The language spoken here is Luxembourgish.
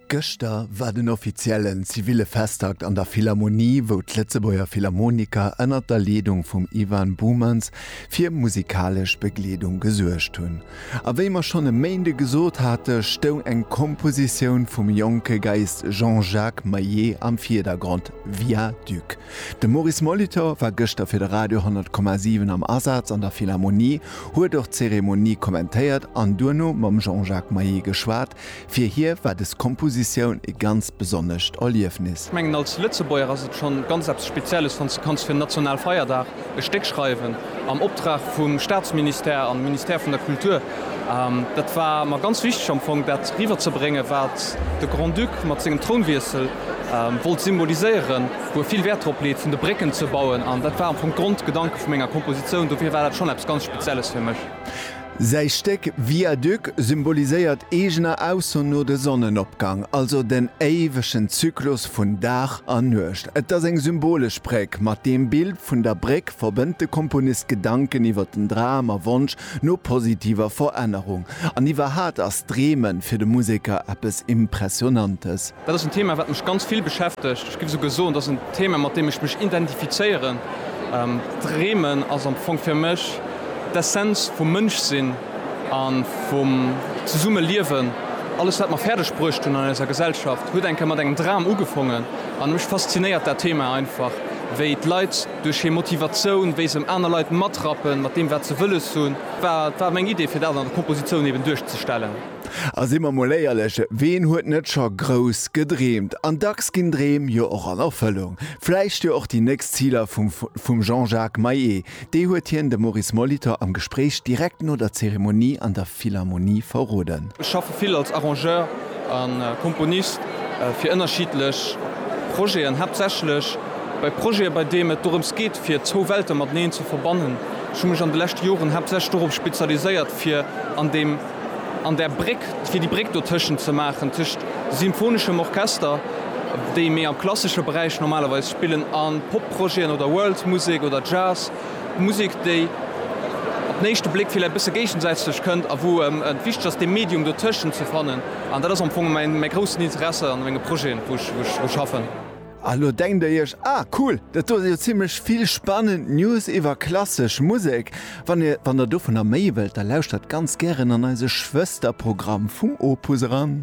Gëschter war den offiziellen ziville Festakt an der Philharmonie, wou d'Lëtzebuerger Philharmoniker ënnert der Leedung vum Ivan Boumans fir musikalesch Begleedung gesuergt hunn. A wéi mer schonn e Méinde gesot hate stoung eng Kompositioun vum jonke Geiist Jean-Jacques Maillet am Vierdergrond, Viaduc. De Maurice Molitor war gëschter fir de Radio 100,7 am Asaz an der Philharmonie, huet och d'Zeremonie kommentéiert an duerno mam Jean-Jacques Maillet geschwat. Fir hie war des Kompositioun e ganz besonnescht Erliefnis. Ech mengen als Lëtzebuerger ass et scho ganz eppes Spezielles, wann s de kanns fir en Nationalfeierdag e Stéck schreiwen. am Optrag vum Staatsministère an Ministère vun der Kultur. Dat war mer ganz wichteg am Fong dat riwwerzebréngen, wat de Grand-Duc mat sengem Trounwiessel wollt symboliséieren, wou e vill Wäert drop leet vun de Brécken ze bauen. An dat war am Fong d'Grondgedanke vu menger Kompositioun, dofir war dat schonn eppes ganz Spezielles fir mech. Säi Stéck Viaduc symboliséiert eegener Ausso no de Sonnenopgang, also den éiwegen Zyklus vun Dag a Nuecht. Et ass eng symbolesch Bréck. Mat deem Bild vun der Bréck verbënnt de Komponist Gedanken iwwer den Dram a Wonsch no positiver Verännerung. An iwwerhat ass d'Dreemen fir de Museker eppes Impressionantes. Dat ass en Thema, wat mech ganz vill beschäftegt. Ech géif esouguer soen, dat ass en Thema, mat deem ech mech identifizéieren. Dreemen ass am Fong fir mech d'Essenz vum Mënschsinn a vum Zesummeliewen. Alles, wat mer fäerdeg bruecht hunn an eiser Gesellschaft, huet eng Kéier mat engem Dram ugefongen. An mech faszinéiert dat Thema einfach, wéi d'Leit duerch hir Motivatioun, wéi se aner Leit matrappen mat deem, wat se wëlles hunn. Dat war meng Idee, fir dat an der Kompositioun eben duerchzestellen. A si mer mol éierlech, ween huet net scho grouss gedreemt? An dacks ginn Dreem jo och an Erfëllung. Vläicht jo och déi nächst Ziler vum Jean-Jacques Maé. Déi huet hien dem Maurice Molitor am Gespréich direkt no der Zeremonie an der Philharmonie verroden. Ech schaffe vill als Arrangeur a Komponist fir ënnerschiddlech Projeten, haaptsächlech bei Projete, bei deem et dorëms geet, fir zwou Welte mateneen ze verbannen. Ech hu mech an de leschte Joren haaptsächlech dorop spezialiséiert, fir an deem. an där Bréck, fir déi Bréck dotëschent ze maachen, tëscht symphoneschem Orchester, déi méi am klassesche Beräich normalerweis spillen, a Pop-Projeten oder World-Musek oder Jazz, Musek, déi op den éischte Bléck villäicht e bësse géigensätzlech kënnt a wou et wichteg ass, dee Medium dotëschent ze fannen. An dat ass am Fong mäi groussen Interessi an menge Projeten, wou ech schaffen. A lo denkt der iech, ah cool, dat do si jo zimmlech vill spannend News iwwer klassesch Musek. Wann der dovunner méi wëllt, da lauschtert ganz gären an eise Schwësterprogramm vum Opus eran.